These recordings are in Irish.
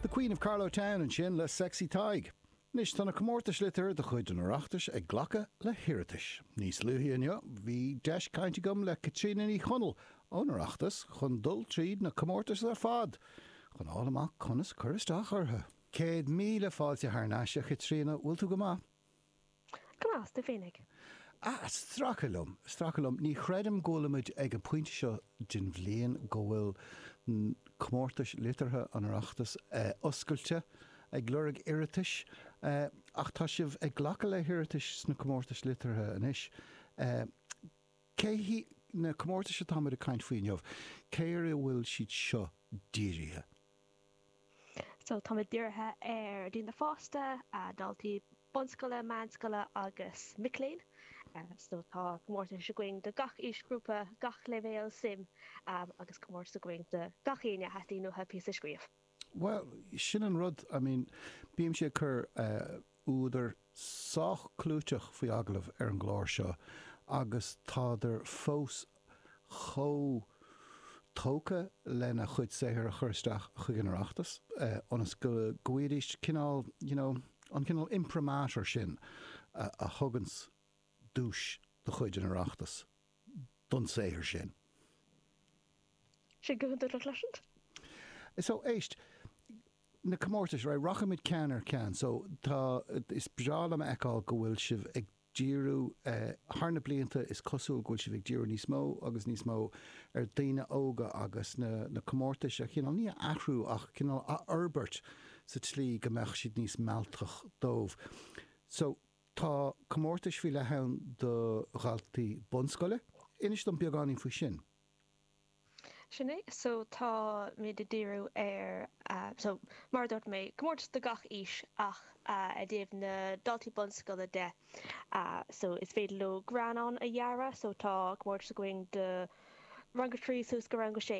The Queen of Carlow Town ansin le Sexy Tadhg. Anois tá na comórtais liteartha de chuid an Oireachtais ag glacadh le hiarratais. Níos luaithe inniu bhí deis cainte agam le Caitríona Ní Chonaill ón Oireachtas chun dul tríd na comórtais ar fad chun a fháil amach conas cur isteach orthu. Céad míle fáilte thar n-ais, a Chaitríona, bhfuil tú go maith? Go maith, is tú féin? Ah, ag stracadh liom, stracadh liom, ní chreidim go bhfuilimid ag an bpointe seo den bhliain go bhfuil comórtais liteartha an Oireachtais oscailte ag lorg iarratais, ach tá sibh ag glacadh le hiarratais sna comórtais liteartha anois. Cé hí, na comórtais atá muid ag caint faoi inniu, cé ar a bhfuil siad seo dírithe? So táimid dírithe ar daoine fásta, daltaí bunscoile, meánscoile agus mic léinn. So tá comórtais againn do gach aoisghrúpa, gach leibhéal suim agus comórtas againn do gach aoinne a dteastaíonn uathu píosa a scríobh. Bhuel, sin an rud, I mean bímse ag cur eh, údair sách clúiteach faoi agallamh ar an gclár seo agus tádar fós chomh tógtha lena chuid saothar a chur isteach chuig an Oireachtas ionas go bhfaighidís cineál, you know, an cineál imprimatur sin a thuganns duais de chuid an Oireachtais don saothar sin. So, éist, na comórtais, right, rachaidh muid ceann ar cheann. So, tá, is breá liom a fheiceáil go bhfuil sibh ag díriú, thar na blianta is cosúil go bhfuil sibh ag díriú níos mó agus níos mó ar dhaoine óga agus na comórtais a chineál, ní a athrú ach cineál a fhorbairt sa tslí go mbeadh siad níos mealltach dóibh. So. Tá comórtais faoi leith ann do dhaltaí bunscoile. Inis dom beagáinín faoi sin. Sin é, so táimid ag díriú ar, so mar a dúirt mé, comórtas do gach aois ach i dtaobh na daltaí bunscoile de, so is féidir leo greannán a dhearadh, so tá comórtas againn do rang a trí suas go rang a sé.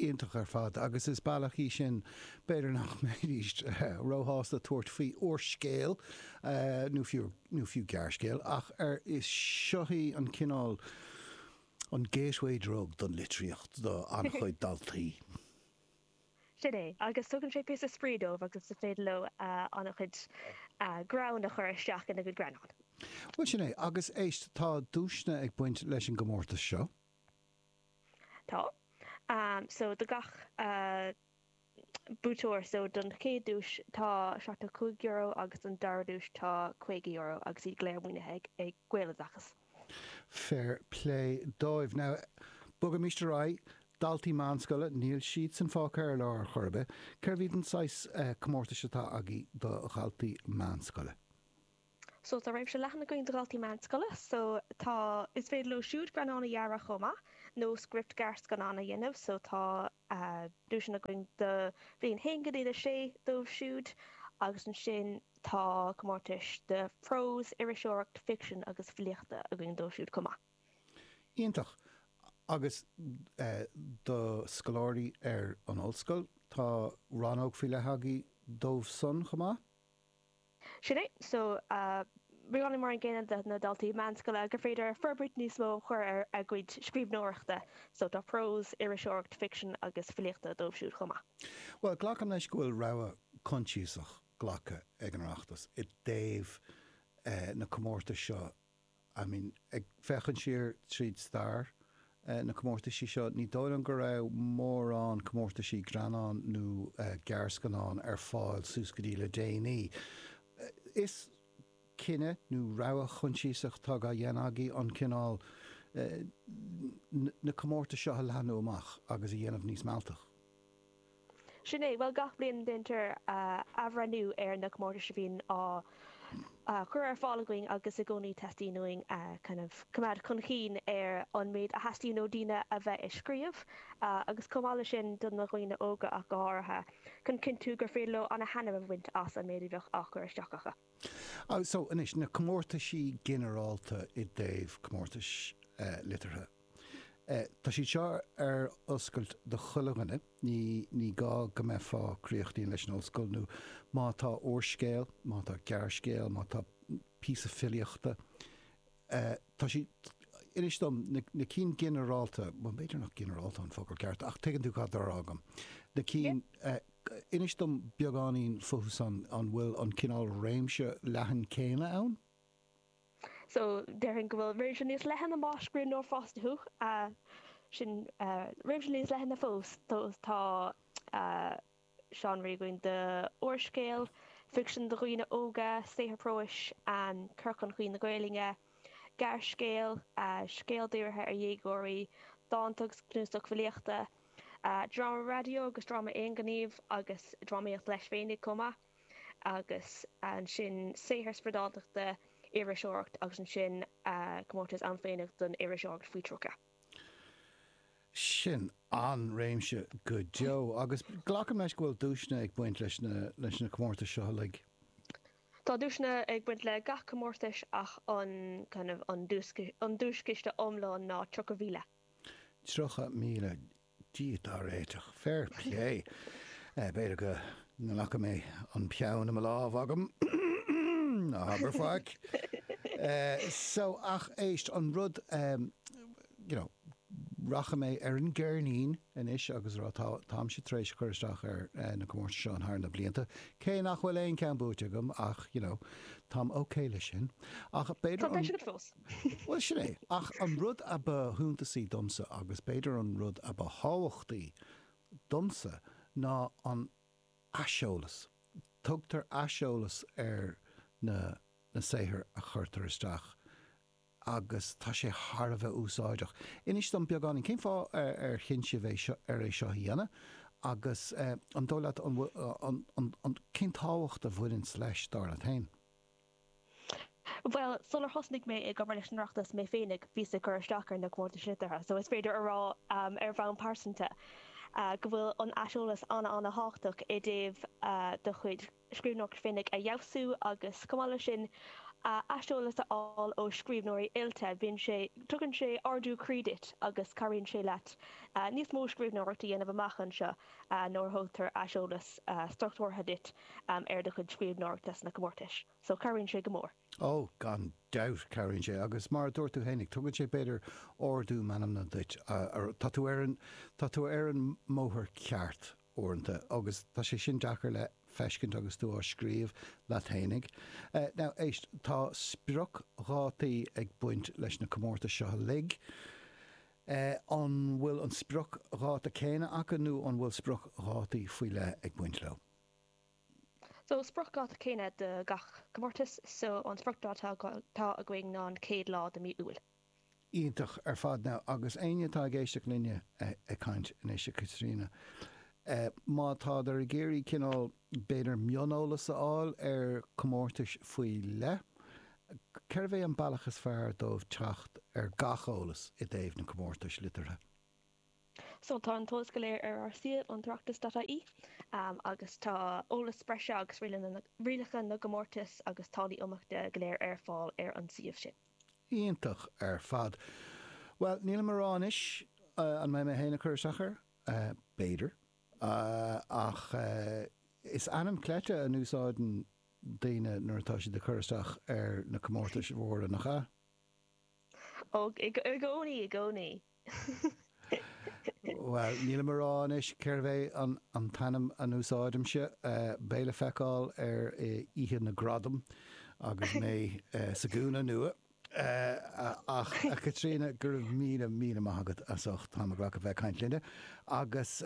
Iontach ar fad, agus is bealach í sin, b'fhéidir, nach mbeidís róshásta tabhairt faoi úrscéal, nó fiú gearrscéal, ach ar, is, seo í an cineál, an gateway drug don litríocht do an-chuid daltaí. Sin é, agus tugann sé píosa spraoi dóibh agus is féidir leo an-chuid greann a chur isteach ina gcuid greannán. Bhuel, sin é, agus éist, tá duaiseanna ag baint leis an gcomórtas seo. Tá. So, do gach buaiteoir, so don chéad duais, tá €75 agus don dara duais tá €50 agus iad go léir maoinithe ag Gaeloideachas. Fair play dóibh. Now, bogaimis ar aghaidh. Daltaí meánscoile, níl siadsan fágtha ar lár ar chor ar bith. Cérb iad an saghas comórtais atá agaí do dhaltaí meánscoile? So tá réimse leathan againn do dhaltaí meánscoile, so tá, is féidir leo siúd greannán a dhearadh chomh maith nó script gearrscannán a dhéanamh, so tá duaiseanna againn do bhliain 1-6 dóibh siúd agus ansin tá comórtais do phrós, iriseoireacht, ficsean agus filíocht againn dóibh siúd chomh maith. Iontach! Agus do scoláirí ar an ollscoil, tá rannóg faoi leith agaí dóibh san chomh maith? Sin é. So, really mar an gcéanna do na daltaí meánscoile gur féidir forbairt níos mó a chur ar a gcuid scríbhneoireachta. So, tá prós, iriseoireacht, ficsean agus filíocht dóibh siúd chomh maith. Bhuel, glacaim leis go bhfuil rogha coinsiasach glactha ag an Oireachtas i dtaobh na comórtais seo I mean, ag féachaint siar tríd stair na comórtaisí seo, ní dóigh liom go raibh mórán comórtaisí greannán nó gearrscannán ar fáil suas go dtí le déanaí. Is cinneadh nó rogha coinsiasach atá á dhéanamh agaí an cineál, na comórtais seo a leathnú amach agus a dhéanamh níos mealltach. Sin é. Bhuel, gach bliain déantar athbhreithniú ar na comórtais a bhíonn á gcur ar fáil againn agus i gcónaí teastaíonn uainn kind of coimeád chun cinn ar an méid a theastaíonn ó daoine a bheith ag scríobh agus chomh maith leis sin do na dhaoine óga ach go háirithe, chun cinntiú gur féidir leo ana thaitneamh a bhaint as an méid a bheadh á chur isteach acu. So, anois, na comórtaisí ginearálta i dtaobh comórtais liteartha, tá siad seo ar oscailt do chuile dhuine, ní, ní gá go mbeifeá críochnaithe leis an ollscoil nó má tá úrscéal, má tá gearrscéal, má tá píosa filíochta Tá siad, inis dom, na cinn ginearálta, bhuel, b'fhéidir nach ginearálta an focal ceart, ach tuigeann tú cad tá á rá agam. Na cinn, inis dom beagáinín futhu san, an bhfuil an cineál réimse leathan céanna ann? So, déarfainn go bhfuil réimse níos leithne más scríbhneoir fásta thú, sin réimse níos leithne fós, tá. Tá réimse againn do úrscéal ficsean do dhaoine óga, saothar próis, cur chun cinn na Gaelainne, gearrscéal, scéal dírithe ar dhéagóirí, dánta agus cnuasach filíochta, dráma raidió agus dráma aonghnímh agus drámaíocht leis féinig chomh maith, agus ansin saothar spriodáltachta, iriseoireacht agus ansin comórtas ann féineach don iriseoireacht faoi 30. Sin an-réimse go deo agus glacaim leis go bhfuil duaiseanna ag baint leis na comórtais seo uilig? Tá duaiseanna ag baint le gach comórtas ach an kind of an duaischiste iomlán ná tríocha mhíle. Tríocha míle. Dia dár réiteach. Fair plé. B'fhéidir go nglacfaidh mé an peann i mo lámh. Ná habair faic. So, ach éist, an rud, you know, rachaidh mé ar an gceirnín anois agus a rá, táimse tar éis a chur isteach ar na comórtais seo ann thar na blianta, cé nach bhfuil aon cheann buaite agam ach, you know, táim okay leis sin. Ach b'fhéidir an. Tá deis agat fós. Bhuel, sin é. Ach an rud a ba shuntasaí domsa, agus b'fhéidir an rud a ba thábhachtaí domsa, ná an t-aiseolas. Tugtar aiseolas ar na na saothair a chuirtear isteach agus tá sé thar a bheith úsáideach. Inis dom beagáinín, cén fáth ar chinn sibh é seo, ar é seo a dhéanamh agus an dóigh leat an bhfuil, an, an, an, cén tábhacht a bhaineanns leis, dar leat féin? Bhuel, sular thosnaigh mé ag obair leis an Oireachtas mé féinig, bhíos ag cur isteach ar na comórtais liteartha, so is féidir a rá, ar bhonn pearsanta, go bhfuil an t-aiseolas an-an-thábhachtach i dtaobh do chuid scríbhneoireacht féinig a fheabhsú agus, chomh maith leis sin, aiseolas a fháil ó scríbhneoirí oilte, bíonn sé, tugann sé ardú croí duit agus cabhraíonn sé leat níos mó scríbhneoireacht a dhéanamh amach anseo. Nuair a thugtar aiseolas struchtúrtha duit ar do chuid scríbhneoireachta sna comórtais so cabhraíonn sé go mór. Ó, gan dabht, cabhraíonn sé agus mar a dúirt tú fhéinig, tugann sé b'fhéidir ardú meanmna duit, tá tú ar an, tá tú ar an mbóthar ceart uaireanta agus tá sé sin deacair le feiscint agus tú á scríobh leat fhéinig. Now, éist, tá spriocdhátaí ag baint leis na comórtais seo uilig, An bhfuil an spriocdháta céanna acu nó an bhfuil spriocdhátaí faoi leith ag baint leo? So, spriocdháta céanna do gach comórtas, so an spriocdháta atá againn ná an chéad lá de mí Iúil. Iontach ar fad. Now, agus éinne atá ag éisteacht linne ag caint anois, a Chaitríona, má tádar ag iarraidh cineál, B'fhéidir mioneolas a fháil ar chomórtais faoi leith. Cérbh é an bealach is fearr dóibh teacht ar gach eolas i dtaobh na gcomórtais liteartha? So, tá an t-eolas go léir ar ár suíomh, an tOireachtas.ie, agus tá eolas breise agus rialacha na gcomórtas agus táillí imeachta go léir ar fáil ar an suíomh sin. Iontach ar fad. Bhuel, nílim ag rá anois an mbeidh mé féin ag cur isteach air. B'fhéidir. ach is ainm cleite a n-úsáideann daoine nuair atá siad ag cur isteach ar na comórtais mhóra, nach ea? Ó, i gcónaí, i gcónaí. Bhuel, nílim a rá anois cérb é an t-ainm a n-úsáidimse. Beidh le feiceáil ar oíche na gradam agus mé sa gcúinne nua! Ach, a Chaitríona, go raibh míle, míle maith agat as ucht t'am a ghlacadh bheith ag caint linne, agus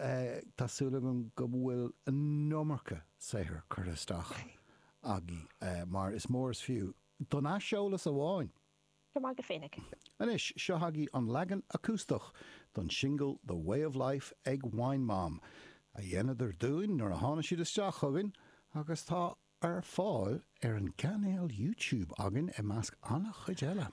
tá súil agam go bhfuil an iomarca saothair curtha isteach agaibh, mar is mór is fiú don aiseolas amháin! Go maith agat féinig! Anois, seo chugaibh an leagan acústach don singil The Way of Life ag Wine Mom, a dhéanadar dúinn nuair a tháinig siad isteach chugainn, agus tá Ar fáil ar an gcainéal YouTube againn, i measc an-chuid eile.